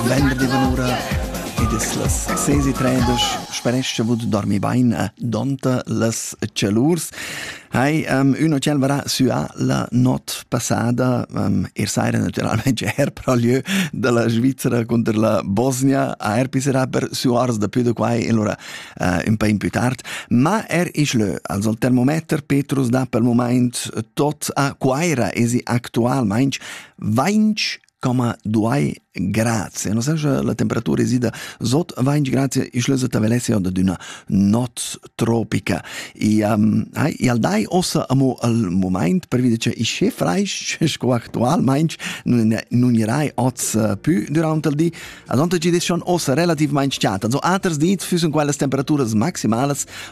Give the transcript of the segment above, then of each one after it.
Venerdì vanura ed es las 6.30 sperescha vud dormi bain e donta las celurs. Hai um, üna ciel varà süa la not passada, um, er saira naturalmente er pro lieu della Svizzera contro la Bosnia, er pisserà per suars da più da quai e allora uh, un po' in più tard, ma er is lö, also il termometer Petrus dà per moment tot a Quaira esi actualmente 20 Coma duai grazie, non sa la temperatura esida sot 20 grazie ischle so tavelessia da d'una not tropica. E um, hai, e al dai ossa amo al moment per vide che isce freisch, sco actualmente non, non irai oz uh, più durante il di. Ad onta ci des schon ossa relativamente chata. Also aters dit füssen quellas temperaturas maximales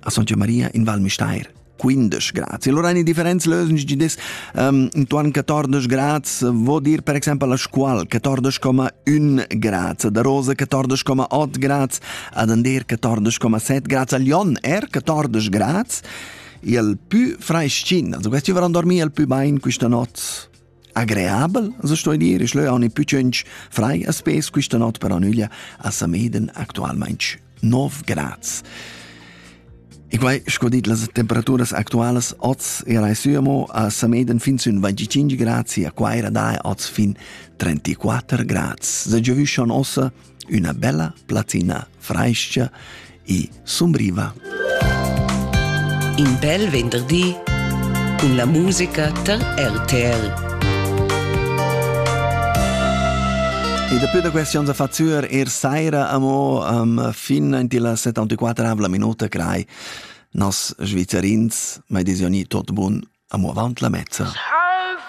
a Soggia Maria in Val Müstair. 15 grads. E allora in differenza lösens gi des um, intuan 14 grads vo dir per exempel la scual 14,1 grads, da Rosa 14,8 grads, ad Ander 14,7 grads, a Lyon er 14 grads e al più freschin, also questi vorranno dormire al più bain questa notte Agreabel as sto dir isch leu aune pü tschünch frai a spes quista not per Anüglia a Sameden actualmaing 9 grads. E quai, sco dit, las temperaturas actualas oz era suamo a Sameden fin sün 25 grads e a Quaira dae oz fin 34 grads. Se giovüschan ossa üna bella platina frais-cha e sumbriva. In bel venderdi cun la musica tar RTL. E daplü da questi onns a facur er saira amo um, fin in la 74 minuta crai nos Svizzerins mai desioni tot bun amo avant la mezza. Salvo!